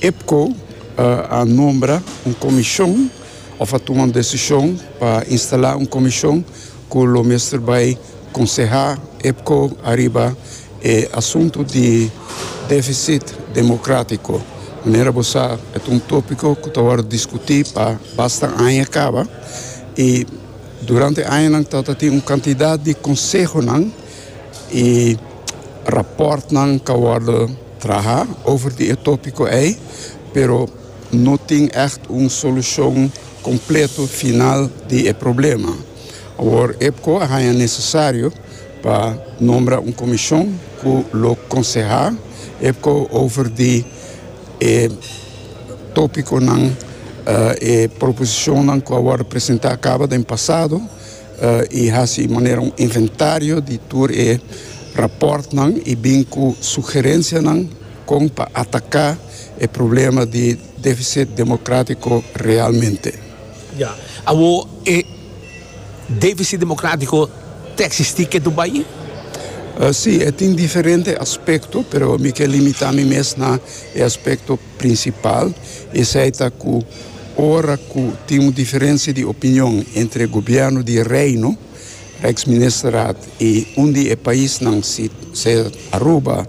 Epco a nombra un comishon of a tuma un desishon pa instala un comishon cu lo mester bay conseha Epco ariba e asunto di deficit democratico. Manera bo sa e ta un topico cu ta worde discuti pa basta aña caba y durante añanan ta ta tin un cantidad di consehonan. E rapòrtnan ka wòrdu trahá over di e tópiko ei, pero no tin ègt un solushon kompleto final di e problema. Awor Epco a haña nesesario pa nombra un komishon ku lo konsehá Epco over di e tópikonan, e proposishonnan ku a wòrdu presentá kaba den pasado. I hasi manera un inventario di tur e rapòrtnan i bin ku sugerensianan kon pa ataká e problema di defisit demokratiko realmente. Ya. Awor e defisit demokratiko ta eksistí ke tur bai? Sí, e tin diferente aspekto, pero mi ke limitá mi mes na e aspekto. Prinsipal esei ta ku ora ku tin un diferensia di opinion entre gobièrnu di e Reino, Rijksministerraad, i un di e paisnan, si se Aruba,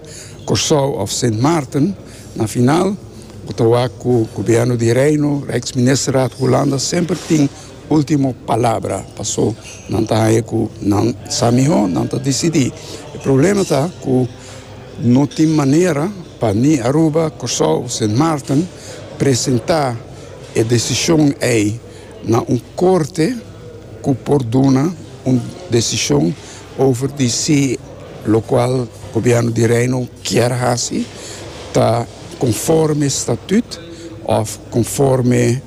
Kòrsou òf Sint Maarten, na final bo ta wak ku gobièrnu di Reino, Rijksministerraad, Hulanda semper tin último palabra. Pasó nan ta haña ku nan sa mihó, nan ta disidí. E problema ta ku. No tin manera pa ni Aruba, Kòrsou o Sint Maarten presentá e desishon ei na un korte ku por duna un desishon over di si lokual Gobièrnu di Reino kier hasi ta konforme statüt òf konforme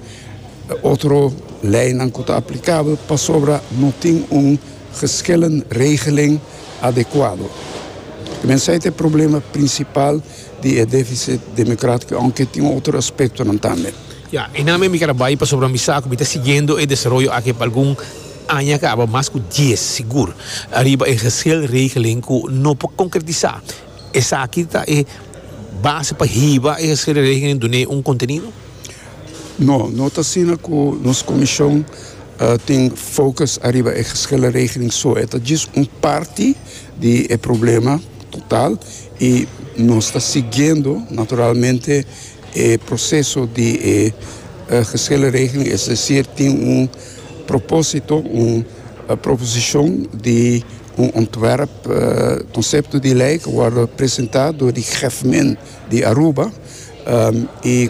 otro leinan ku ta aplikabel pasobra no tin un Geschillen regelen adecuado. Mensei ta e problema principal di e deficit democratico, aunke tin otro aspectonan tambe. Ya, einan mi keda bay pasobra mi sa cu mi ta siguiendo e desaroyo aki pa algun aña caba, mas cu dies sigur, riba e geschil regelen cu no por concretisa. Esaki ta e base pa hiba e sererei den dun'é un kontenido? No, no ta asina ku nos komishon tin fokus ariba e sererei den so. E ta djis un parti di e problema total i nos ta siguiendo naturalmente e proseso di e sererei den. Es desir tin un propósito, un proposishon di Un ontwerp konsepto di lei ku wòrdu presentá dor di Gèfmin di Aruba i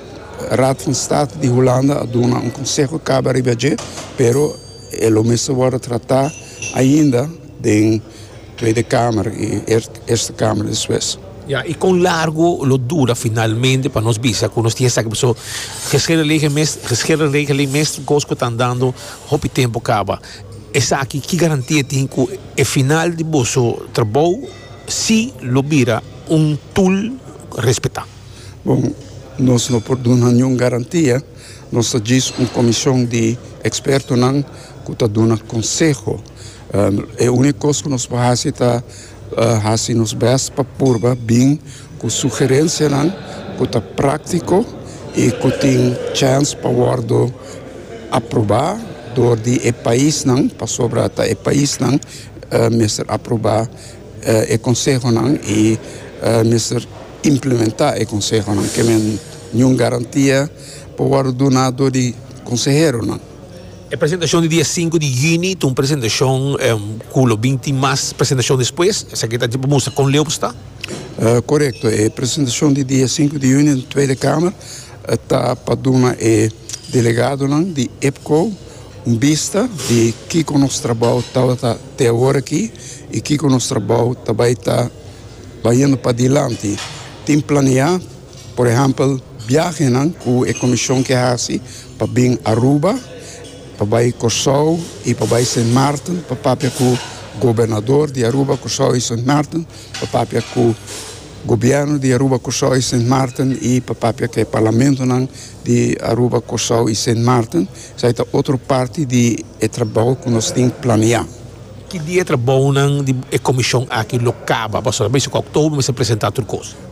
Raad van State di Hulanda a duna un konseho kaba riba dje, pero e lo mester wòrdu tratá ainda den Tweede Kamer i Eerste Kamer despues. Ya, i kon largu lo dura finalmente pa nos bisa ku nos tin esaki? Pasobra Gescherenregeling mester kos ku ta andando hopi tempu kaba. Esaki ki garantía e tin cu e final di boso trabou si lo bira un tool respetá? Bon, nos no por duna niun garantía. Nos ta djis un comision di expertonan cu ta duna conseho. E unico cos cu nos por haci ta Hasi nos bèst pa purba bin ku sugerensianan ku ta práktiko i ku tin chèns pa wòrdu aprobá dor di e paisnan, pasobra ta e paisnan mester aprobá e konsehonan i mester implementá e konsehonan. Ke men niun garantia por wòrdu duná dor di konseheronan. E presentashon di dia sinku di yüni ta un presentashon ku lo bin tin mas presentashon despues. Esaki ta pa mustra kon leu bo sta. Korekto, e presentashon di dia sinku di yüni den Tweede Kamer ta pa duna e delegadonan di EPCO un bista di kiko nos trabou tabata te awor aki i kiko nos trabou ta bai ta bayendo padilanti. Tin planeá Por ehèmpel, biahenan ku e komishon ke hasi pa bin Aruba, pa bai Kòrsou i pa bai Sint Maarten pa papia ku gobernador di Aruba, Kòrsou i Sint Maarten, pa papia ku gobièrnu di Aruba, Kòrsou i Sint Maarten i pa papia ku e parlamentonan di Aruba, Kòrsou i Sint Maarten. Esei ta otro parti di e trabou ku nos tin planeá. Ki dia e trabounan di e komishon aki lo kaba? Pasobra mester ku Oktober mester presentá tur kos.